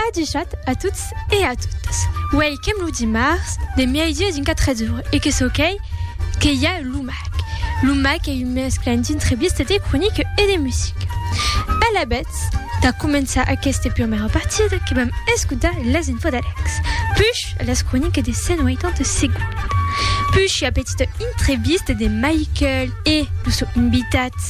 Adichat a tots e a totas. Uèi qu'èm lo dimars de mièi-dia d'un 4 d'ora e que çò qu'ei que i a lo mac. Lo mac ei un mesclan d'entrebista de cronica e de musica. Alavetz, tà començar aquesta prumèra partida que vam escotar las infos d'Alex, puish las cronicas de 180 segondas, puish ua petita entrevista de Michael e lo sò invitat,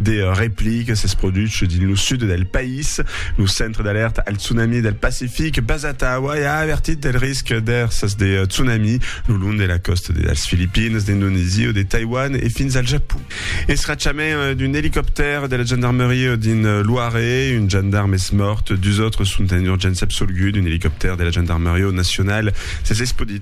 De replic s'es produch dins lo sud del país. Lo Centre d'Alèrta al Tsunami del Pacific basat a Hawaii a avertit del risc d'èrsas de tsunami lo long de la còsta de las Filipines, d'Indonesia, de Taiwan e fins al Japon. Escrachament d'un elicoptèr de la gendarmeria dins Loire, un gendarm es mòrt, dus autres sont en urgéncia absolguts d'un elicoptèr de la gendarmeria nacionala. S'es espodit.